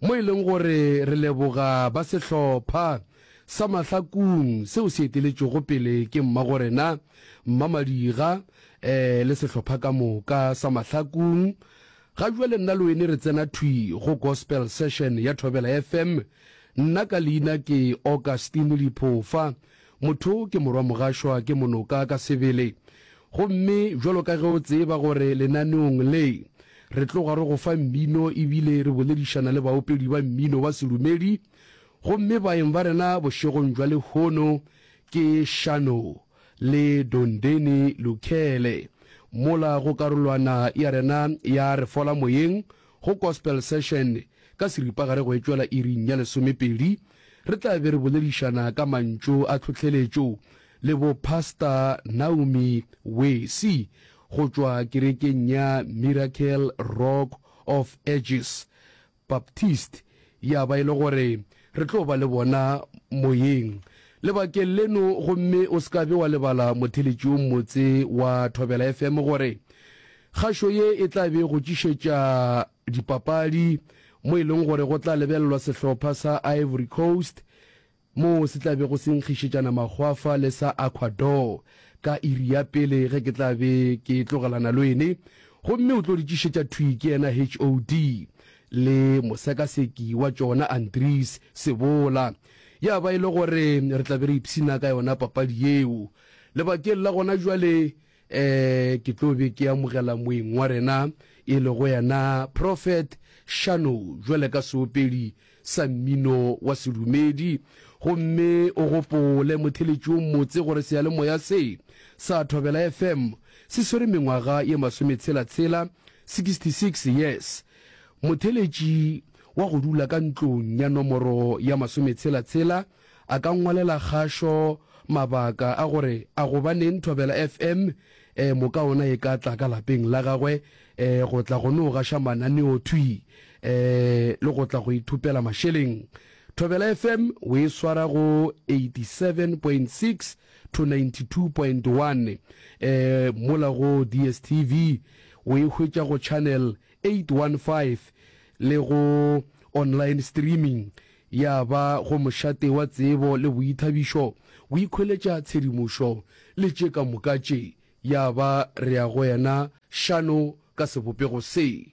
mo e leng gore re leboga ba sehlopha sa Mahlakung seo se eteletšwego pele ke Mmagorena Mmamadiga eh le sehlopha ka moka sa Mahlakung. Ga jwale nna le wene re tsena thwi go Gospel Session ya Thobela FM. Nna ka leina ke Augustine Liphofa Motho ke morwa mogašwa ke monoka ka sebele. Gomme bjalo ka ge o tseba gore lenaneong le, re tloga re go fa mmino ebile re boledišana le baopedi ba mmino wa sedumedi, gomme baeng ba rena bošegong bja lehono ke Shano le Dondeni Lukhele, mola go karolwana ya rena ya Re Fola Moyeng Go Gospel Session ka seripagare go etšwela iring ya lesomepedi, re tla be re boledišana ka mantšu a tlhohleletšo le bo Pasta Naomi Wesi go tšwa kerekeng ya Miracle Rock of Ages Baptiste Ya ba e le gore re tlo ba le bona moyeng lebakeng leno, gomme o se ka be wa lebala motheletši yo mmotse wa Thobela FM gore kgašo ye e tla be go tšišetša dipapadi mo e leng gore go tla lebelelwa sehlopha sa Ivory Coast moo se tla bego se nkgišetšana makgwafa le sa Ecuador ka iri ya pele ge ke tla be ke tlogelana lwene, gomme o tlo di tšišetša thwi ke yena HOD le mosekaseki wa tšona Andries Sebola. Ya ba e le gore re tla be re ipshina ka yona papadi yeo. Lebakeng la gona jwale um ke tlo be ke amogela moeng wa rena e lego yena prophet shano jwale ka seopedi sa mmino wa sedumedi gomme o gopole motheletšong motse gore seyalemoya se sa thobela fm se swere mengwaga ye masometshela-tshela 66 yes motheletši wa go dula ka ntlong ya nomoro ya masometshela-tshela a ka ngwalela kgašo mabaka a gore a gobaneng Thobela FM eh, moka ona e ka tla ka lapeng la gagwe eh, go tla go no gaša mananeo thwi eh, le go tla go ithupela mašeleng. Thobela FM o e swara go 87.6 to 92.1 eh, mola go DSTV o e hwetša go channel 815 le go online streaming Ya ba go mošate wa tsebo le boithabišo, go ikhweletša tshedimošo, le tše ka moka tše, ya ba re ya go yena šano ka sebopego se.